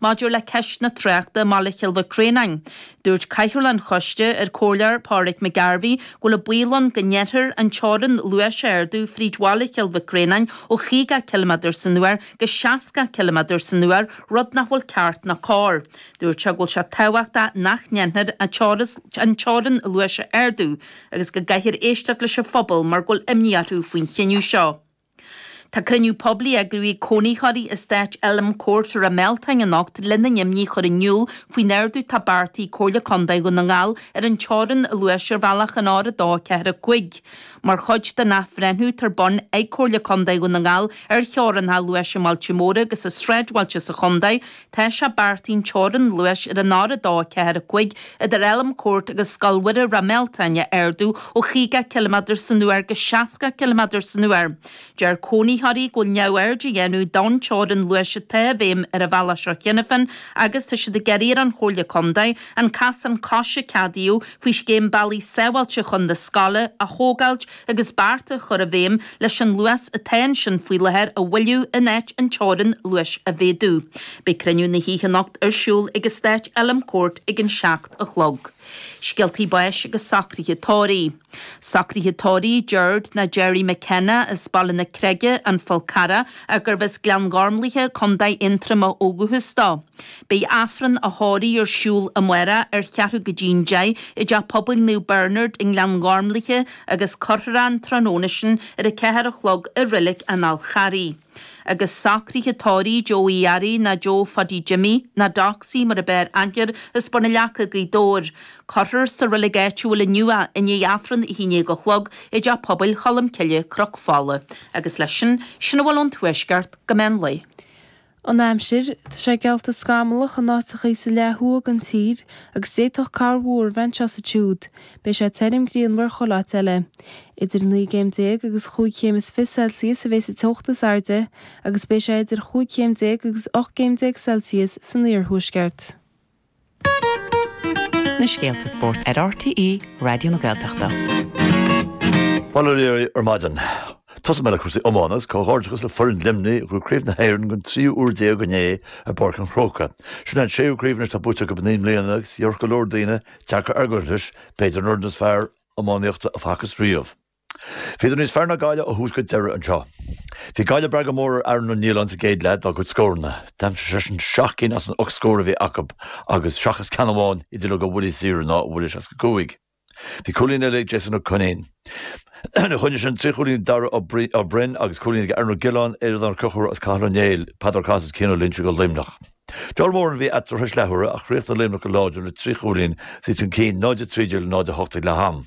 Maidir le ceist na tráchta i mBaile Chill Mhic Réanáin, dúirt Cathaoirleach an Choiste, an Comhairleoir Pauric McGarvey, go bhfuil an baol ann go ndéanfar an teorainn luais a ardú fríd Bhaile Chill Mhic Réanáin ó chaoga ciliméadar san uair go seasca ciliméadar san uair, rud nach bhfuil ceart ná cóir. Dúirt sé go bhfuil sé tábhachtach nach ndéanfar an teorainn luais a ardú agus go gcaithfear éisteacht leis an phobal mar go bhfuil imní orthu faoin chinneadh seo. Tá cruinniú poiblí eagraithe ag cónaitheoirí in Eastát Elm Court i Ráth Mealtain anocht lena n-imní a chur in iúl faoin ardú atá beartaithe ag Comhairle Contae Dhún na nGall ar an teorainn luais ar bhealach an R245. Mar chuid den athbhreithniú atá ar bun ag Comhairle Contae Dhún na nGall ar theorainneacha luais i mbailte móra agus i sráidbhailte sa chontae, Tá sé beartaithe an teorainn luais ar an R245 idir Elm Court agus Scoil Mhuire Ráth Mealtain a ardú ó chaoga ciliméadar san uair go seasca ciliméadar san uair. Deir cónaitheoirí go bhfuil neamhaird á dhéanamh den teorainn luais atá i bhfeidhm ar an bhealach seo cheana féin agus tá siad ag iarraidh ar an Chomhairle Contae an casán coise a ceadaíodh faoi scéim Bealaí Sábháilte chun na scoile a thógáilt agus beart a chur i bhfeidhm leis an luas atá ansin faoi láthair a mhoilliú in áit an teorainn luais a mhéadú. Beidh cruinniú na hoíche anocht ar siúl ag Eastát Elm Court ag an seacht a chlog. Scéaltaí báis agus socruithe tórraimh. Socruithe tórraimh Gerard ná Gerry McKenna as Baile na Creige, An Fál Carrach, ach gurbh as Gleann Ghormlaithe, Co. Aontroma ó dhúchas dó. Beidh Aifreann a thórraimh ar siúl amárach ar cheathrú go dtí'n deich i dTeach Pobail Naomh Bearnard i nGleann Ghormlaithe agus cuirfear an tráthnóna sin ar a ceathair a chlog i Reilig an Fháil Charraigh. Agus socraithe tórraimh Joe Uí Fhearraigh ná Joe Phaddy Jimmy, ná Doxy mar ab fhearr aithne air as Bun an Leaca, Gaoth Dobhair. Cuirfear sa reilig áitiúil inniu i ndiaidh Aifreann a haon déag a chlog i dTeach Pobail Cholmcille, Cnoc Fola. Agus leis sin, sin a bhfuil ón Tuaisceart go meán lae. an aimsir, tá sé geallta scamallach in áiteachaí sa leath thuaidh den tír agus d'fhéadfadh corrmhúr a bheith anseo is ansiúd, beidh sé tirim grianmhar chuile áit eile. Idir a naoi gcéim déag agus cúig chéim is fiche Celsius a bheas an teocht is airde agus beidh sé idir chúig chéim déag agus ocht gcéim déag Celsius san iarthuaisceart. na scéalta spóirt ar RTÉ Raidió na Gaeltachta. Bail ó Dhia oraibh ar maidin, tosóidh mé le cúrsaí iomána agus comhghairdeachas le foireann Luimnigh a bhuaigh Craobh na hÉireann don tríú uair déag inné i bPáirc an Chrócaigh. Sin é an séú craobh anois atá buaite acu i naoi mbliana agus déarfadh go leor daoine deacair argóint leis b'fhéidir an fhoireann is fearr iománaíochta a facthas riamh. Bhíodar níos fearr ná Gaillimh ó thús go deireadh anseo. Bhí Gaillimh ag brath go mór ar Aaron Niland sa gcéad leath dá gcuid scóranna. D'aimsigh seisean seacht gcinn as an ocht scór a bhí acu agus, seachas ceann amháin, iad uilig ó bhuillí saora nó ó bhuille 65. Bhí cúilín eile ag Jason Ó Coinín. Ina choinne sin, trí chúilín ag Dara Ó Broin agus cúilín ag Aaron Ó Giolláin, Aodán Ó Conchúir agus Cathal Ó Néill, Peadar Ó Cathasaigh agus Cian Ó Loinsigh do Luimneach. Níor mhór a bhí eatarthu tar éis leathuaire ach chríochnaigh Luimneach go láidir le trí chúilín is iad chun cinn, 0-13 le 0-8 ag leath-am.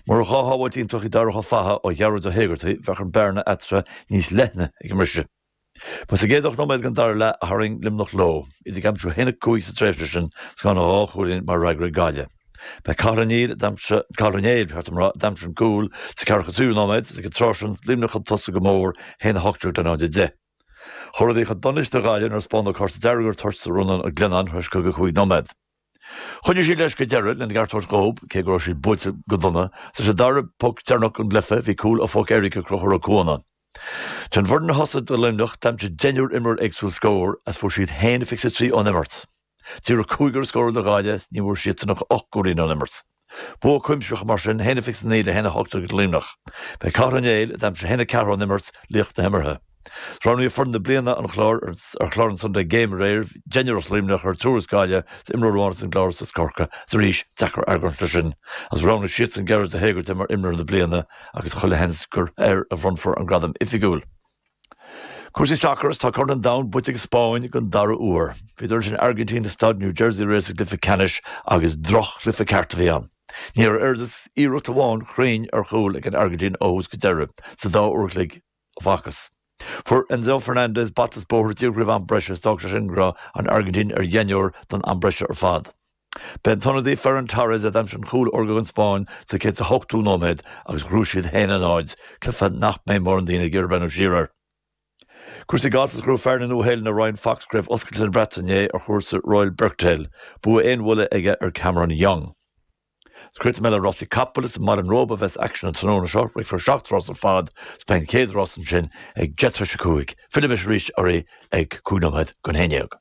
Murach dhá shábháilt iontach ag Darach Ó Fathaigh ó Ghearóid Ó hÉigeartaigh bheadh an bearna eatarthu níos leithne ag an mbriseadh. Ba sa gcéad ocht nóiméad den dara leath a tharraing Luimneach leo, iad ag aimsiú 1-5 sa tréimhse sin agus gan ach dhá chúilín mar fhreagra ag Gaillimh. Ba é Cathal Ó Neill, Cathal Ó Néill, ba cheart dom a rá, a d'aimsigh an cúl sa 43ú nóiméad agus ag an tráth sin Luimneach chun tosaigh go mór, 1-18 in aghaidh 0-10. Chuaigh rudaí chun donais do Ghaillimh nuair a spáineadh cárta dearg ar an toirt do Rónán Mag Leannáin tar éis 55 nóiméad. Choinnigh siad leis go deireadh lena gceart tabhairt dhób, cé go raibh siad buailte go dona. Leis an dara poc deireanach den gcluife, bhí cúl ó phoc éirice ag Conchúr Ó Cuana. Den bhfoireann a thosaigh do Luimneach, d'aimsigh deichniúr imreoir éagsúil scór, is fuair siad 1-23 ón imirt. Díreach cúigear a scóráil do Ghaillimh, is ní bhfuair siadsan ach ocht gcúilín ón imirt. Bua cuimsitheach mar sin 1-29 le 1-18 ag Luimneach. Ba é Cathal Ó Néill, a d'aimsigh 1-4 ón imirt, laoch na himeartha. Roghnaíodh foireann na bliana an Chláir ar chlár an Sunday Game aréir, Deichniúr as Luimneach air, triúr as Gaillimh is imreoir amháin as an gClár is as Corcaigh is arís deacair argóint leis sin agus roghnaigh siadsan Gearóid Ó hÉigeartaigh mar imreoir na bliana agus chuile sheans gur air a bhronnfar an gradam oifigiúil. Cúrsaí sacair agus tá Corn an Domhain buaite ag an Spáinn don dara huair, bhuaileadar an Airgintín i Staid New Jersey aréir sa gcluiche ceannais agus droch-chluiche ceart a bhí ann. Ní raibh oiread is iarracht amháin chruinn ar chúl ag an Airgintín ó thús go deireadh sa dá uair an chloig a facthas. Fuair Enzo Fernandez bata is bóthar díreach roimh am breise is d'fhág sé sin go raibh an Airgintín ar dheichniúr don am breise ar fad. Ba é an t-ionadaí Ferran Torres a d'aimsigh an cúl órga don Spáinn sa 108ú nóiméad agus ghnóthaigh siad 1-0, cluiche nach mbeidh mórán daoine ag iarraidh breathnú siar air. Cúrsaí gailf is ghnóthaigh fear na Nua-Shéalainne Ryan Fox Craobh Oscailte na Breataine inné ar chúrsa Royal Birkdale, bua aon bhuille aige ar Cameron Young. Is críochnóidh mé le rásaí capall is i mBaile an Róba a bheas aicsean an tráthnóna seo, rithfear seacht rás ar fad is beidh an chéad rás ansin ag deich tar éis a cúig. Fillfidh mise arís oraibh ag cúig nóiméad don haon déag.